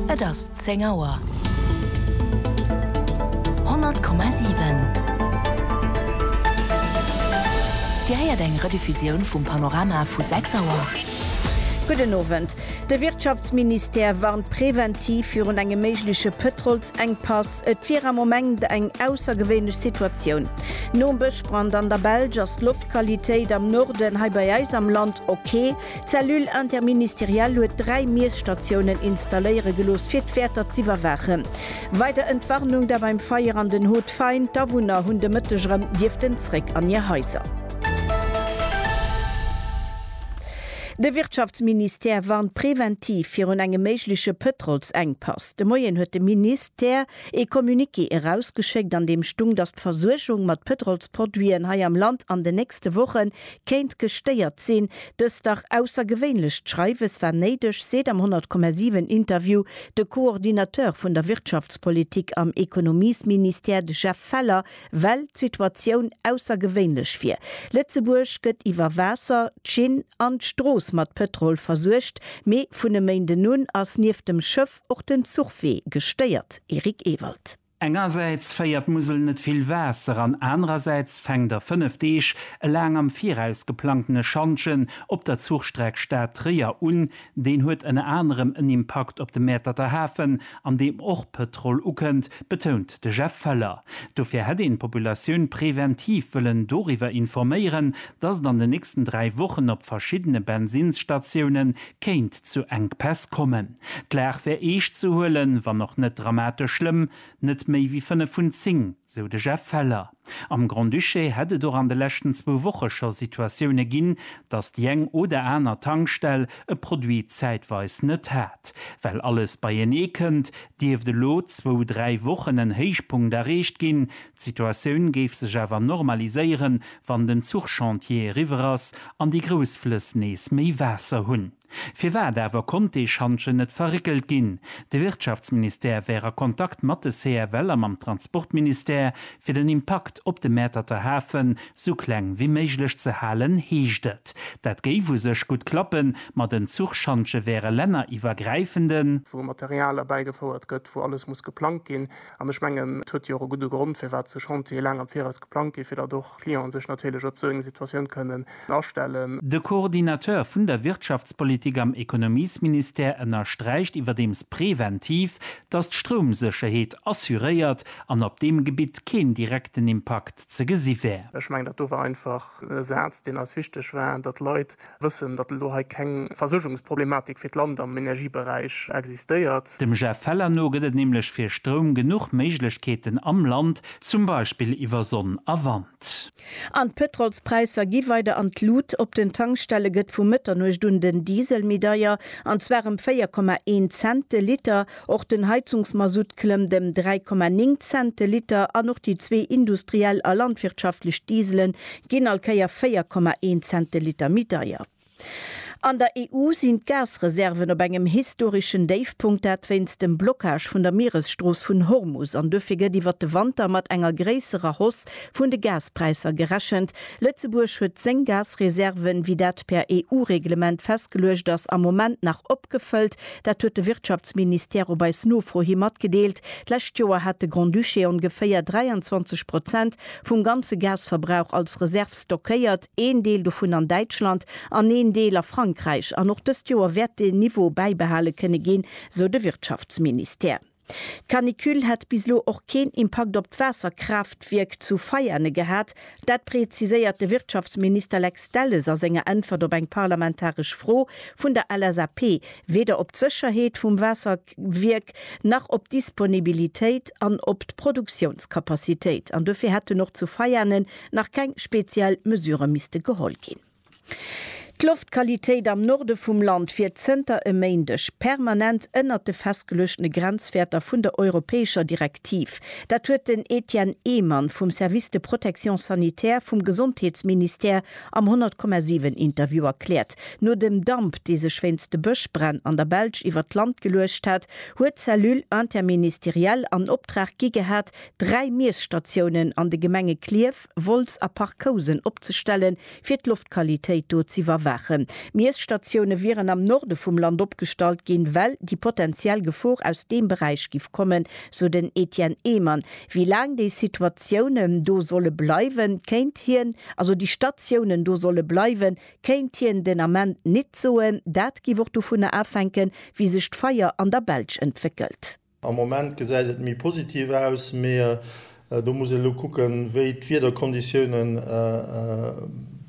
Et ass 10 Auer. 100,7 Dir héiert eng Rediffusioun vum Panorama vu 6 Auer. Gudden Owend. De Wirtschaftsministère warnt präventiv virun engem méigleche Pëtrolsengpass. Et wier am Moment eng aussergewéinlech Situatioun. Nom Bëschbrand an der Belsch ass d'Loftqualitéit am Norden hei bei eis am Land ok. D'Cellule interministérielle huet dräi Miesstatiounen installéiere gelooss, fir d'Wäerter z'iwwerwaachen. Weider Entwarnung da beim Feier an den Haut Fain, d'Awunner hunn de Mëtteg erëm dierften zréck an hir Haiser. De Wirtschaftsministère warnt preventiv virun engem méigleche Pëtrolsengpass. De Moien huet de Minis tère ee Communiqué erausgeschéckt, an deem stung, datt d'Versuergung mat Pëtrolsproduiten hei am Land an den nächste Woche kéint gestéiert sinn. Dëst dach aussergewéinlecht Schreiwes war néideg, seet am 100,7 Interview de Coordinateur vun der Wirtschaftspolitik am Ekonomiesministère, de Jeff Feller, well d'Situatioun aussergewéinlech wier. Lëtzebuerg gëtt iwwer Waasser, d'Schinn an d'Strooss mat Pëtrol versuergt, mee vun e Méinden un ass nieft dem Schëff och den Zuchwee gestéiert. Eric Ewald. Engersäits féiert d'Musel net vill Waasser an anerersäits fänkt a fënnef Deeg e laang am Viraus geplangtene Schantjen op der Zuchstreck Stad-Tréier un. Deen huet ënner anerem en Impakt op de Mäerterter Hafen, an deem och Pëtrol ukënnt, betount de Jeff Feller. Dofir hätt een d'Populatioun preventiv wëllen doriwwer informéieren, datt et an den nächsten dräi Wochen op verschiddene Bensinnsstatioune kéint zu Enkpäss kommen. D'Lag wär eescht ze huelen, wann och net dramatesch schlëmm, net méi wéi 5 vun 10, sou de Jeff Feller. Am Grand-Duché hätt et och an de leschten zwou Woche scho Situatioune ginn, datt déi eng oder aner Tankstell e Produit zäitweis net hat. Well alles beienee kënnt, dierft elo zwou, dräi Wochen en Héichpunkt erreecht ginn. D'Situatioun géif sech awer normaliséieren, wann den Zuchchantier eriwwer ass an déi grouss Flëss nees méi Waasser hunn. Firwat awer konnt dee Schantjen net verréckelt ginn? De Wirtschaftsministère wär a Kontakt mat de CFL a mam Transportministère, fir den Impakt op de Mäerterter Hafe sou kleng wéi méiglech ze halen, heescht et. Dat géif u sech gutt klappen, ma den Zuchschantje wär e länneriwwergräifenden. wou Material erbäigefouert gëtt, wou alles muss geplangt ginn, An ech mengen, et huet jo och e gudde Grond, firwat esou Chantiere laang am Viraus geplangt ginn, fir datt och d'Clienten sech natierlech op esou eng Situatioun kënnen astellen. De Coordinateur vun der Wirtschaftspolitik am Ekonomiesministère ënnersträicht iwwerdeems präventiv, datt d'Stroumsécherheet assuréiert an op deem Gebitt keen direkten Impakt ze gesi wär. Ech mengen, dat do war einfach e Saz, deen eis wichteg war, datt d'Leit wëssen, datt elo hei keng Versuergungsproblematik fir d'Land am Energieberäich existéiert. Dem Jeff Feller no gëtt et nämlech fir Stroum genuch Méiglechkeeten am Land, zum Beispill iwwer Sonn a Wand. An d'Pëtrolspräisser gi weider an d'Lut. Op den Tankstelle gëtt vu Mëtternuecht un den Diesel méi deier, an zwar ëm 4,1 Cent de Liter. Och den Heizungsmasutt klëmmt ëm 3,9 Cent de Liter an och déi zwee industriell a landwirtschaftlech Dieselen ginn all Kéier 4,1 Zenteliter méi deier. An der EU sinn d'Gasreserven op engem historeschen Déifpunkt, dat wéinst dem Blockage vun der Mieresstrooss vun Hormus, an dofir gëtt iwwert de Wanter mat enger gréisserer Hausse vun de Gaspräisser gerechent. Lëtzebuerg huet seng Gasreserven, wéi dat per EU-Reglement festgeluecht ass, am Moment nach opgefëllt. Dat huet de Wirtschaftsministère op eis Nofro hi matgedeelt. D'lescht Joer hat de Grand-Duché ongeféier 23 Prozent vum ganze Gasverbrauch als Reserv stockéiert, een Deel dovun an Däitschland an een Deel a Frankräich. An och dëst Joer wäert dee Niveau bäibehale kënne ginn, sou de Wirtschaftsministère. D'Canicule hätt bis elo och keen Impakt op d'Waasserkraaftwierk zu Veiane gehat. Dat preziséiert de Wirtschaftsminister Lex Delles a senger Äntwert op eng parlamentaresch Fro vun der LSAP. Weder op d'Sécherheet vum Waasser. Wierk nach op d'Disponibilitéit an op d'Produktiounskapazitéit, an dofir hätten och zu Veianen nach keng speziell Mesurë misste geholl ginn. D'Loftqualitéit am Norde vum Land wier zënter e Méindeg permanent ënnert de festgeluechtene Grenzwäerter vun der europäescher Direktiv. Dat huet den Etienne Ehmann vum Service de protection sanitaire vum Gesondheetsministère Am 100,7 Interview erkläert, no dem Damp, dee sech wéinst de Bëschbränn an der Belsch iwwert d'Land geluecht hat, huet d'Cellule interministérielle an Optrag gi gehat, dräi Miesstatiounen an de Gemenge Klierf, Wolz a Parc-Housen opzestellen, fir d'Loftqualitéit do z'iwwerwaachen. Miesstatioune wieren am Norde vum Land opgestallt ginn, well déi potentiell Gefor aus deem Beräich giff kommen, sou den Etienne Ehmann. Wéi laang déi Situatiounen do solle bleiwen, kéint hien, also déi Statiounen do solle bleiwen, kéint hien den Ament nit soen. Dat giff och dovunner afänken, wéi sech d'Feier an der Belsch entwéckelt. Am Moment gesäit et méi positiv aus, mee do muss een elo kucken, wéi d'Wiederkonditiounen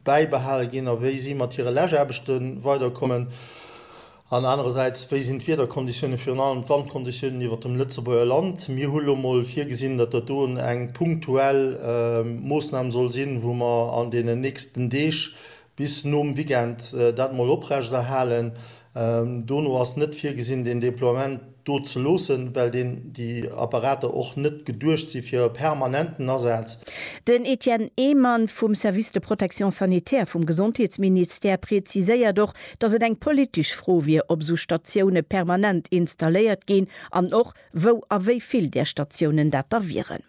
bäibehale ginn a wéi si mat hire Läschaarbechte weiderkommen. An anerersäits, wéi sinn d'Wiederkonditiounen, virun allem d'Wandkonditiounen iwwert dem Lëtzebuerger Land? Mir hu lo mol virgesinn, datt dat do eng punktuell Moossnam soll sinn, wou mer an deenen nächsten Deeg bis nom Weekend dat mol oprechterhalen. Dono ass net virgesinn, deen Déploiement. do ze loossen, well deen, déi Apparater och net geduecht si fir e permanenten Asaz. Den Etienne Ehmann vum Service de protection sanitaire vum Gesondheetsministère preziséiert och, datt et eng politesch Fro wier, ob esou Statioune permanent installéiert ginn an och wou a wéi vill där Statiounen dat da wieren.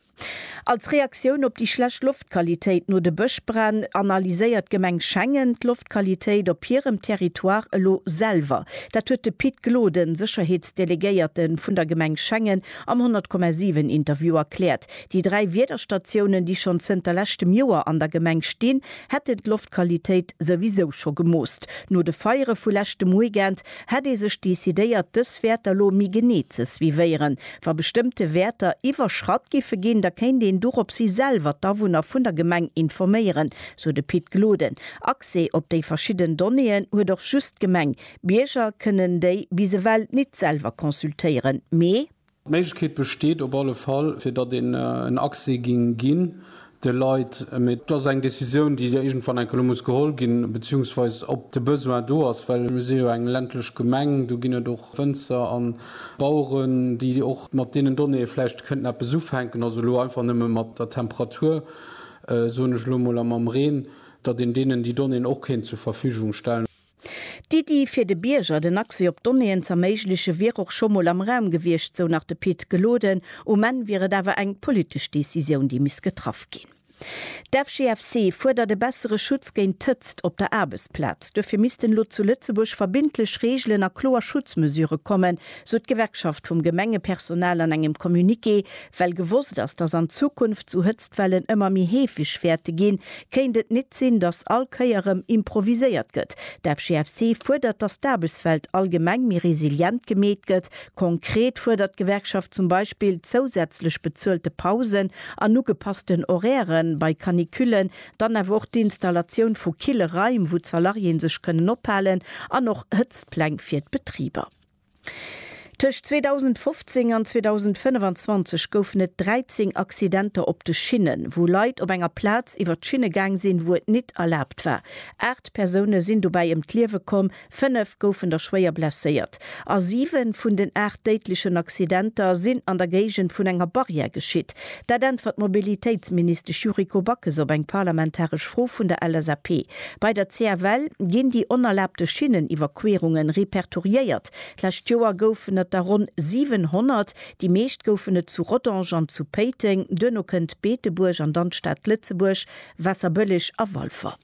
Als Reaktioun op déi schlecht Loftqualitéit no de Bëschbränn analyséiert d'Gemeng Schengen d'Loftqualitéit op hirem Territoire elo selwer. Dat huet de Pit Gloden, Sécherheetsdelegéierte vun der Gemeng Schengen, am 100,7 Interview erkläert. Déi dräi Wiederstatiounen, déi schonn zënter leschtem Joer an der Gemeng stinn, hätten d'Loftqualitéit souwisou scho gemoosst. No de Feiere vu leschtem Weekend hätt ee sech decidéiert dës Wäerter lo méi genee ze suivéieren. Wa bestëmmte Wäerter iwwerschratt giffe ginn, da kéint een doropshi selwer d'Awunner vun der Gemeng informéieren, sou de Pit Gloden. Accès op déi verschidden Donnéeën huet och just d'Gemeng. Bierger kënnen déi bis ewell nit selwer consultéieren, mee. D'Méiglechkeet besteet op alle Fall, fir datt een en Accès géing ginn de Leit. Mee et ass eng Décisioun, déi iergendwann enke lo muss geholl ginn, beziehungsweise ob de Besoin do ass, well mir si jo eng ländlech Gemeng. Do ginn et och Wënzer a Baueren, déi och mat deenen Donnéeë vläicht kënnten eppes ufänken. Also elo einfach nëmme mat der Temperatur, soen ech elo emol, a mam Reen, datt een deenen déi Donnéeën och kéint zur Verfügung stellen. D'Iddi, fir de Bierger den Accès op Donnéeën z'erméiglechen, wier och scho mol am Raum gewiescht, sou nach de Pit Gloden. Um Enn wier et awer eng politesch Decisioun, déi misst getraff ginn. D'FGFC fuerdert e bessere Schutz géint d'Hëtzt op der Aarbechtsplaz. Duerfir missten elo zu Lëtzebuerg verbindlech Reegelen a kloer Schutzmesure kommen, sou d'Gewerkschaft vum Gemengepersonal an engem Communiqué, Well gewosst ass, dass an Zukunft sou Hëtztwellen ëmmer méi heefeg wäerte ginn, kéint et nit sinn, dass all Kéier rëm improviséiert gëtt. D'FGFC fuerdert, dass d'Aarbechtswelt allgemeng méi resilient gemeet gëtt. Konkret fuerdert d'Gewerkschaft zum Beispill zousätzlech bezuelte Pausen an ugepassten Horaire bei Canicullen, dann awer och d'Installatioun vu kille Raim, wou d'Salariéen sech kënnen ophalen, an och Hëtztpläng fir d'Betriber. Tëscht 2015 an 2025 goufen et 13 Accidenter op de Schinnen, wou Leit op enger Plaz iwwer d'Schinne gaang sinn, wou et nit erlaabt war. Aacht Persoune sinn dobäi ëm d'Liewe komm, fënnef goufen der schwéier blesséiert a siwe vun den aacht déidlechen Accidenter sinn an der Géigend vun enger Barrière geschitt. Dat äntwert d'Mobilitéitsministesch Yuriko Backes op eng parlamentaresch Fro vun der LSAP. Bei der CFL ginn déi onerlaabte Schinneniwwerquerungen repertoriéiert. D'lescht Joer goufen et der ronn 700. Déi meescht goufen et zu Rodange an zu Péiteng. Duerno kënnt Beetebuerg an dann d'Stad Lëtzebuerg, Waasserbëlleg a Walfer.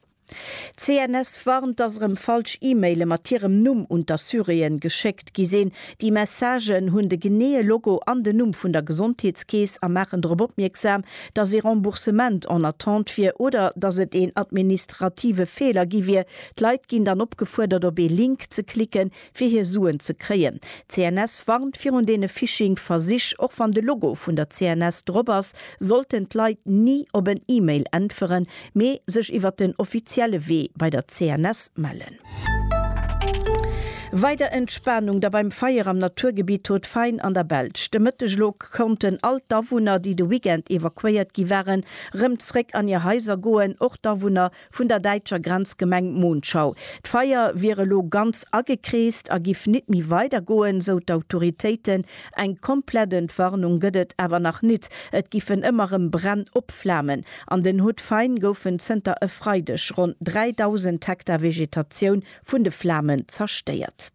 D'CNS warnt, dass erëm falsch E-Maile mat hirem Numm un d'Assuréen geschéckt. D'Gi sinn déi Messagen, hunn de geneeë Logo an den Numm vun der Gesondheetskeess a maachen drop opmierksam, dass ee Remboursement en attente wier oder dass et een administrative Feeler gi wier. D'Leit ginn dann opgefuerdert, op ee Link ze klicken, fir hir Suen ze kréien. D'CNS warnt virun deene Phishing-Versich. Och wann de Logo vun der CNS drop ass, sollten d'Leit ni op en E-Mail äntweren, mee sech iwwer den offizielle Wee bei der CNS mellen. Weider Entspanung da beim Feier am Naturgebitt Haut Fain an der Belsch. De Mëtteg elo konnten all d'Awunner, déi de Weekend evakuéiert gi waren, rëm zréck an hir Haiser goen, och d'Awunner vun der däitscher Grenzgemeng Monschau. D'Feier wier elo ganz agekreest a giff nit méi weider goen, sou d'Autoritéiten. Eng komplett Entwarnung gëtt et awer nach nit. Et giffen ëmmer rëm Bränn opflamen. An den Hauts-de-Faine goufen zënter e Freideg ronn 3.000 Hektar Vegetatioun vun de Flamen zerstéiert.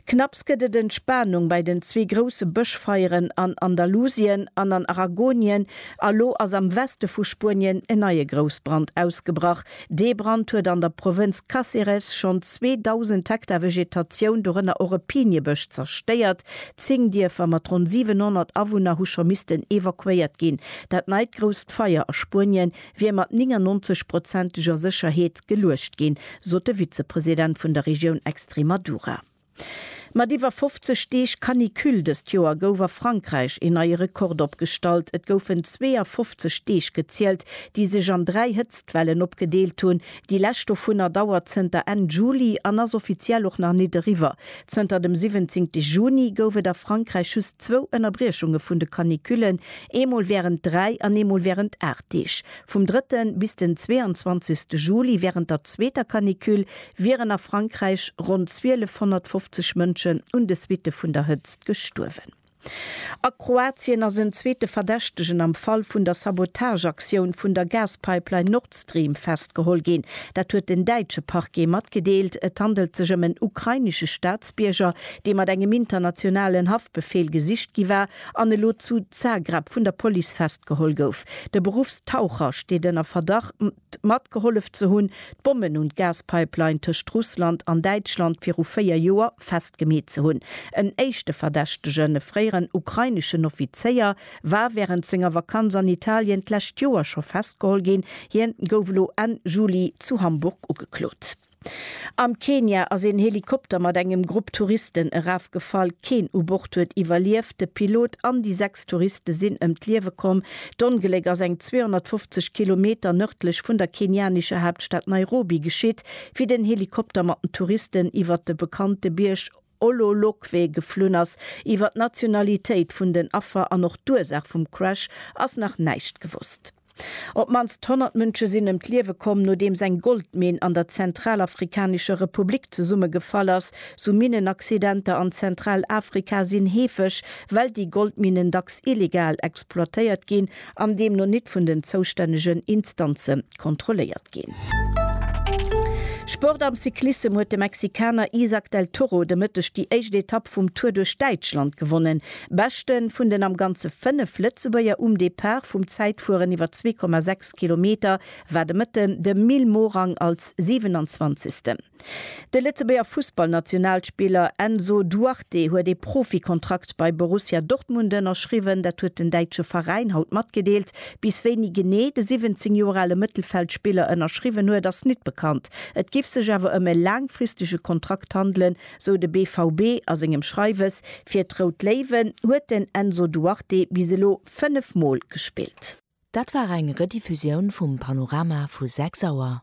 Knapps gëtt et Entspanung bei den zwee grousse Bëschfeieren an Andalusien an an Aragonien a lo ass am Weste vu Spuenien en neie Groussbrand ausgebrach, Dee Brand huet an der Provënz Cáceres schonn 2.000 Hektar Vegetatioun, dorënner och e Piniebësch, zerstéiert. Zéng Dierfer mat ronn 700 Awunner hu scho missten evakuéiert ginn. Dat neit grousst Feier a Spuenien wier mat 99 prozenteger Sécherheet geluecht ginn, sot de Vizepresident vun der Regioun Extremadura. Mat iwwer 50 Deeg Canicule dëst Joer gouf a Frankräich een neie Rekord opgestallt. Et goufen 52 Deeg gezielt, déi sech an dräi Hëtztwellen opgedeelt hunn. Déi lescht dovunner dauert zënter Enn Juli an ass offiziell och nach nit eriwwer. Zënter dem 17 Juni gouf et a Frankräich just zwou Ënnerbriechunge vun de Canicullen, eemol wärend dräi an eemol wärend aacht Deeg. Vum drëtte bis den 22 Juli wärend der zweeter Canicule wieren a Frankräich ronn 1250 Mënschen un de Suitte vun der Hëtzt gestuerwen. A Kroatien ass en zweete Verdächtegen am Fall vun der Sabotageaktioun vun der Gaspipeline Nord Stream festgeholl ginn. Dat huet den däitsche Parquet matgedeelt. Et handelt sech ëm en ukrainesche Staatsbierger, dee mat engem internationalen Haftbefeel gesicht gi war an elo zu Zagreb vun der Police festgeholl gouf. De Beruffstaucher steet ënner Verdacht. matgehollef ze hunn, d'Bommen un d'Gaspipeline tëscht Russland an Däitschland viru véier Joer festgemeet ze hunn. En éischte Verdächtegen, e fréieren ukraineschen Offizéier, war wärend senger Vakanz an Italien d'lescht Joer scho festgeholl ginn. Hien gouf elo Enn Juli zu Hamburg ugeklot. Am Kenia ass een Helikopter mat engem Grupp Touristen erafgefall. Keen u Bord huet iwwerlieft. De Pilot an déi sechs Touriste sinn ëm d'Liewe komm. D'Ongléck ass eng 250 Kilometer nërdlech vun der kenianescher Haaptstad Nairobi geschitt, wéi den Helikopter mat den Touristen iwwert de bekannte Bierg Ololokwe geflunn ass. Iwwer d'Nationalitéit vun den Affer an och d'Ursaach vum Crash ass nach näischt gewosst. Op d'mannst 100 Mënsche sinn ëm d'Liewe komm, nodeems eng Goldminn an der Zentralafrikanescher Republik zesummegefall ass. Sou Minnenaccidenter an Zentralafrika sinn heefeg, well déi Goldminnen dacks illegal exploitéiert ginn an deemno nit vun den zoustännegen Instanze kontrolléiert ginn. Sport Am Cyclissem huet de Mexikaner Isaac del Toro de Mëtteg déi éischt Etapp vum Tour duerch Däitschland gewonnen. Beschte vun den am Ganze 5 Lëtzebuerger um Depart vum Zäitfueren iwwer 2,6 Kilometer war de Mëtten de Mil Morang als 27. De Lëtzebuerger Fussballnationalspiller Enzo Duarte huet ee Profikontrakt bei Borussia Dortmund ënnerschriwwen. Dat huet den däitsche Veräin haut matgedeelt. Bis wéini genee de 17 Joer ale Mëttelfeldspiller ënnerschriwwen huet, ass nit bekannt. Et giff sech awer ëm e laangfristege Kontrakt handelen, sou de BVB a sengem Schreiwes. Fir d'Rout Léiwen huet den Enzo Duarte bis elo 5 Mol gespillt. Dat war eng Rediffusioun vum Panorama vu 6 Auer.